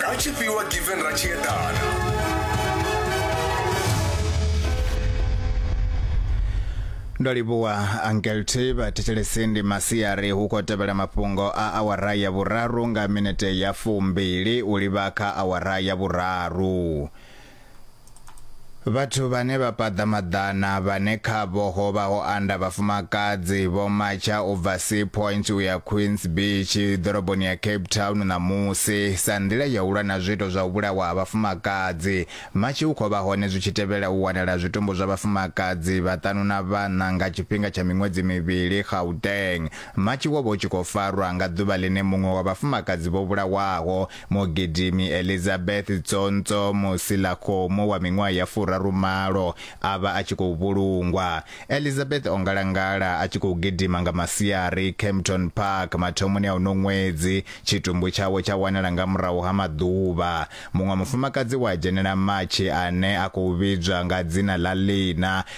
ha tshifhiwa given ra tshi eḓana ndo livhuwa angelty vhathetshelesi ndi masiari hu khou tevhela mafhungo a awara ya vhuraru nga minete ya fumbili u livha kha awara ya vhuraru Vhathu vhane vha paḓa maḓana vhane khavho ho vha ho anda vhafumakadzi vho matsha u bva Sea Point u ya Queens Beach ḓoroboni ya Cape Town ṋamusi sa nḓila ya u lwa na zwiito zwa u vhulawa ha vhafumakadzi. Matshi u khou vha hone zwi tshi tevhela u wanala zwitumbu zwa vhafumakadzi vhaṱanu na vhaṋa nga tshifhinga tsha miṅwedzi mivhili Gauteng. Matshi wo vha u tshi khou farwa nga ḓuvha ḽine muṅwe wa vhafumakadzi vho vhulawaho Mugidimi Elizabeth Tsonts'o Musilakgomo wa miṅwaha ya furaru malo a vha a tshi khou vhulungwa. Elizabeth o ngalangala a tshi khou gidima nga masiari Kempton Park mathomoni a uno ṅwedzi, tshitumbu tshawe tsha wanala nga murahu ha maḓuvha. Muṅwe mufumakadzi we a dzhenela matshi ane a khou vhidzwa nga dzina ḽa Lina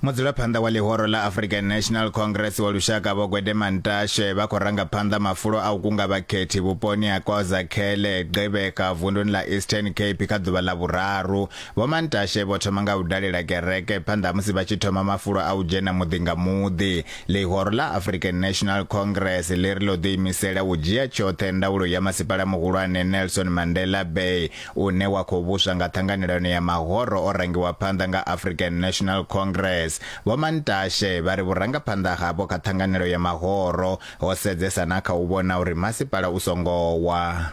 mudzulaphanḓa wa ḽihoro ḽa african national congress wa lushaka vho gwede mantashe vha khou ranga phanḓa mafulo a u kunga vhakhethi vhuponi ha kozakhele gqibeka vunduni ḽa eastern cape kha ḓuvha ḽa vhuraru vho mantashe vho thoma nga u dalela kereke phanḓa musi vha tshi thoma mafulo a u dzhena muḓi nga muḓi Ḽihoro ḽa African National Congress ḽi ri ḽo ḓiimisela u dzhia tshoṱhe ndaulo ya masipala muhulwane Nelson Mandela Bay une wa khou vhuswa nga ṱhanganelano ya mahoro o rangiwa phanḓa nga African National Congress. Vho Mantashe vha ri vhurangaphanḓa havho kha ṱhanganelo ya mahoro ho sedzesa na kha u vhona uri masipala u songo wa.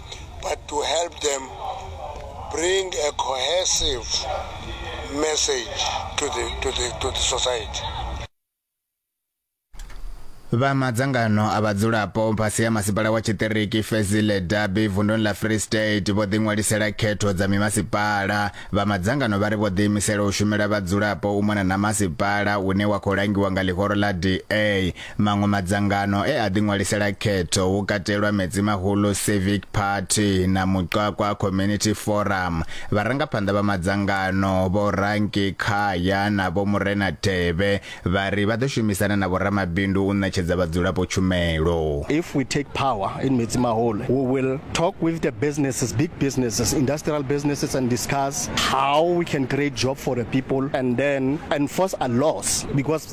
but to help them bring a cohesive message to the, to the, to the society. vha madzangano a vhadzulapo fhasi ya masipala wa tshiṱiriki fezile dabi vunduni ḽa free state vho ḓiṅwalisela khetho dza mimasipala vha madzangano vha ri vho ḓiimisela u shumela vhadzulapo u mona na masipala une wa khou langiwa nga ḽihoro ḽa da Maṅwe madzangano e a ḓiṅwalisela khetho hu katelwa Metsimahulu Civic Party na Muqwaqwa Community Forum. Vharangaphanḓa vha madzangano Vho Ranki Khaya na Vho Murena Tevhe vha ri vha ḓo shumisana na vhoramabindu u ṋetshedza vhadzulapo tshumelo. If we take power in Metsimahulu, we will talk with the businesses, big businesses, industrial businesses and discuss how we can create job for the people and then enforce a laws because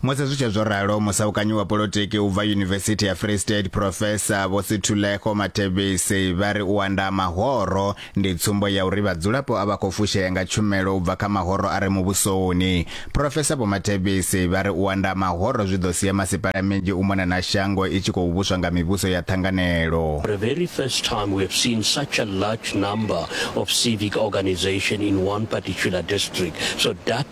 Musi zwi tshe zwo ralo, musaukanyi wa polotiki u bva Yunivesithi ya Free State Professor Vho Sithulekho Mathebisi vha ri u anda mahoro ndi tsumbo ya uri vhadzulapo a vha khou fushea nga tshumelo u bva kha mahoro a re muvhusoni. Professor Vho Mathebisi vha ri u anda mahoro zwi ḓo sia masipala minzhi u mona na shango i tshi khou vhuswa nga mivhuso ya ṱhanganelo. For the very first time we have seen such a large number of civic organisation in one particular district so that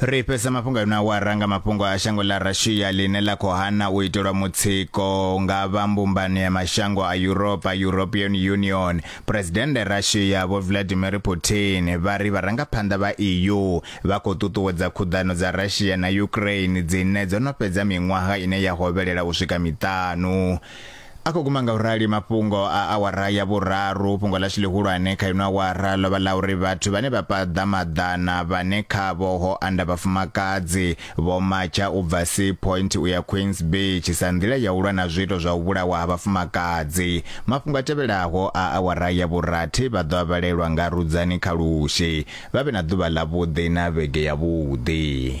Ri fhedza mafhungo a ino awara nga mafhungo a shango ḽa Russia ḽine ḽa khou hana u itelwa mutsiko nga vha Mbumbano ya Mashango a Yuropa, European Union. Phresidennde Russia Vho Vladimir Putin vha ri vharangaphanḓa vha EU vha khou ṱuṱuwedza khuḓano dza Russia na Ukraine dzine dzo no fhedza miṅwaha ine ya hovhelela u swika miṱanu. A khou guma ngaurali mafhungo a awara ya vhuraru. Fhungo ḽashu ḽihulwane kha ino awara ḽo vha ḽa uri vhathu vhane vha paḓa maḓana vhane khavho ho anda vhafumakadzi vho matsha u bva Sea Point u ya Queens Beach sa nḓila ya u lwa na zwiito zwa u vhulawa ha vhafumakadzi. Mafhungo a tevhelaho a awara ya vhurathi vha ḓo a vhalelwa nga Rudzani Khalushi. Vha vhe na ḓuvha ḽavhuḓi na vhege yavhuḓi.